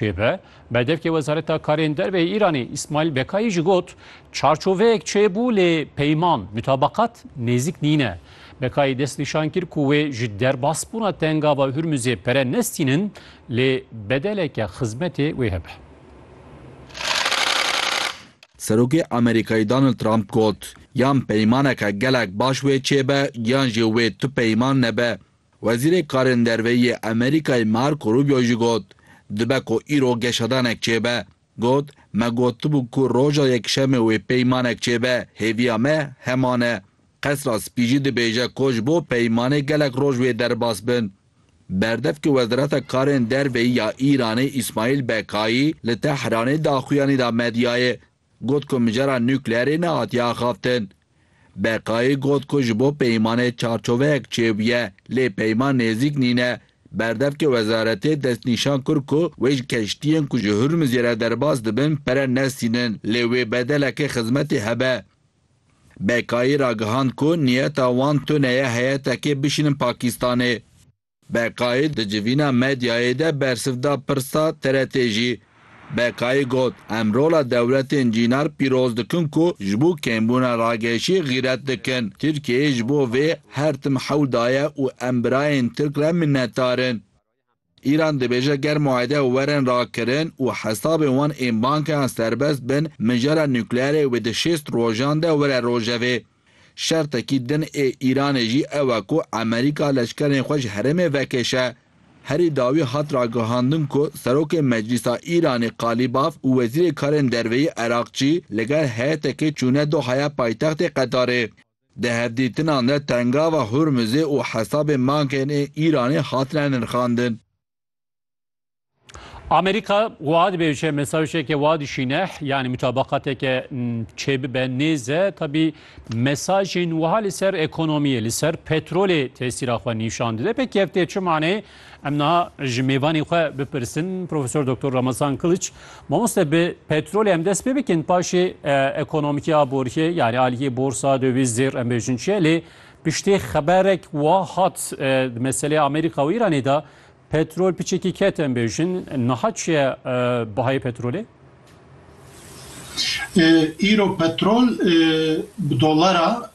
Pê ve, berdevkê Wezareta Karên Derve yê Îranê Îsmaîl Bekayî jî got, Çarçoveyek çêbû lê peyman, mutabakat, nêzik nîne. Bekayî dest nîşan kir ku wê ji derbasbûna tengava Hurmuzê pere nestînin lê bedeleke xizmetê wê hebe. Serokê Amerîkayî Donald Trump got, Yan peymaneke gelek baş wê çêbe yan jî wê tu peyman nebe. Wezîrê Karên Derve yê Amerîkayê Marco Rubio jî got, Dibe ku îro geşedanek çêbe. Got, Me gotibû ku roja Yekşemê wê peymanek çêbe, hêviya me heman e. Qesra Spî jî dibêje ku ji bo peymanê gelek roj wê derbas bin. Berdevkê Wezareta Karên Derveyî ya Îranê Îsmaîl Bekayî li Tehranê daxuyanî da medyayê Got ku mijara nukleerê nehatiye axaftin. Beqayî got ku ji bo peymanê çarçoveyek çêbûye lê peyman nêzîk nîne. Berdevkê wezaretê destnîşan kir ku wê ji keştiyên ku ji Hurmizê re derbas dibin pere nestînin lê wê bedelekê xizmetê hebe. Beqayî ragihand ku niyeta wan tune ye heyetekê bişînin Pakîstanê. Beqayî di civîna medyayê de bersiv da pirsa TRT'ê jî. Beqayî got, Em rola dewletên cînar pîroz dikin ku ji bo kêmbûna rageşî xîret dikin. Tirkiyeyê ji bo vê her tim hewl daye û em birayên Tirk re minnetdar in. Îran dibêje ger muayede werin rakirin û hesabên wan ên bankeyan serbest bin, mijara nukleerê wê di şêst rojan de were rojevê. Şertekî din ê Îranê jî ew e ku Amerîka leşkerên xwe ji herêmê vekêşe. Herî dawî hat ragihandin ku Serokê Meclîsa Îranê Qalîbaf û Wezîrê Karên Derveyî Eraqçî li gel heyetekê çûne Dohaya paytextê Qetarê. Di hevdîtinan de Tengava Hurmizê û hesabên bankên ê Îranê hatine nirxandin. Amerîka wiha dibêje mesajeke wa dişîne yanî mutabaqateke çêbibe nêze tabî mesajên wiha li ser ekonomiyê li ser petrolê tesîra xwe nîşan dide pê kevtê çi manê em niha ji mêvanê xwe bipirsin Profesor Doktor Ramazan Kiliç mamoste bi petrolê em dest pê bikin paşê ekonomikî aboriyê yanî aliyê borsa dewîz zêr em bêjin çiye lê Piştî xeberek wa hat di meselê Amerîka û Îranê de petrol piçekî ket em bêjin. Niha çi ye bihayê petrolê? Îro petrol bi dolara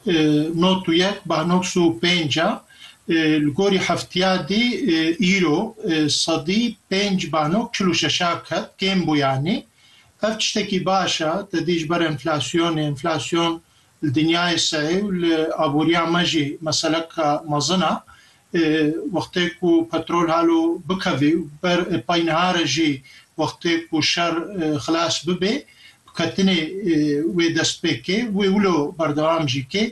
nod û yek beh noks û pênc e. Li gorî heftiya dî îro sedî pênc beh nok çil û şeş a ket kêm bû yanî. Ev tiştekî baş e te dî ji ber enflasyonê, enflasyon Li dinyayê seyê û li aboriya me jî meseleka mezin a. Wextê ku petrol halo bikevê û ber pey niha re jî wextê ku şer xilas bibê bi ketinê wê dest pê kê wê wilo berdewam jî kê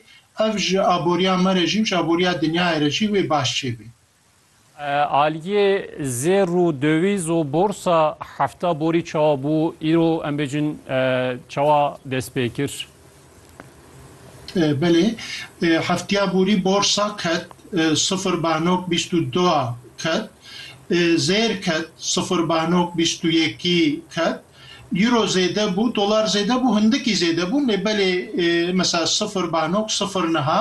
ev ji aboriya me re jî û ji aboriya dinyayê re jî wê baş çêbê. Aliyê zêr û döwîz û borsa hefta borî çawa bû îro em bêjin çawa dest pê kir? Belê, heftiya borî borsa ket sifir banok bîst û du ket, zêr ket sifir banok bîst û yekî ket, îro zêde bû, dolar zêde bû, hindikî zêde bûn lê belê mesela sifir banok sifir niha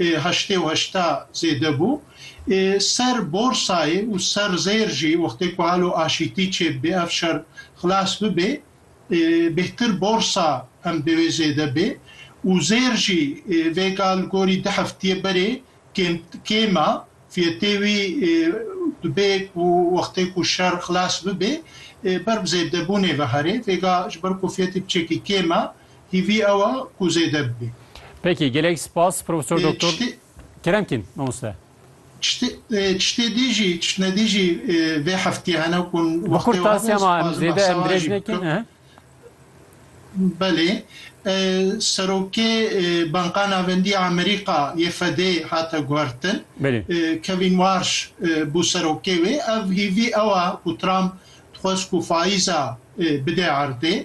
ê heştê û heşta zêde bû ê ser borsayê û ser zêr jî wextê ku halo aşîtî çêbibê ev şer xilas bibê ê bêhtir borsa em dê wê zêde bê û zêr jî ê vêga li gorî di heftiyê berê kêm kêm a fiyetê wî ê dibê ku wextê ku şer xilas bibê ê ber bi zêdebûnê ve herê vêga ji ber ku fiyetî bi çekî kêm a Hîvî ew a ku zêde bibe. Peki gelek spas Profesor Doktor Keremkîn mamoste. Çitê dî jî çitne dî jî vê heftî hene ku wextê we hebe spas bi behsa we jî bikim. Belê serokê Banka Navendî ya Amerîka yê FED'ê hate guhertin. Kevîn Warsh bû serokê wê. Ev hîvî ew a ku Trump dixwest ku faiza bide erdê.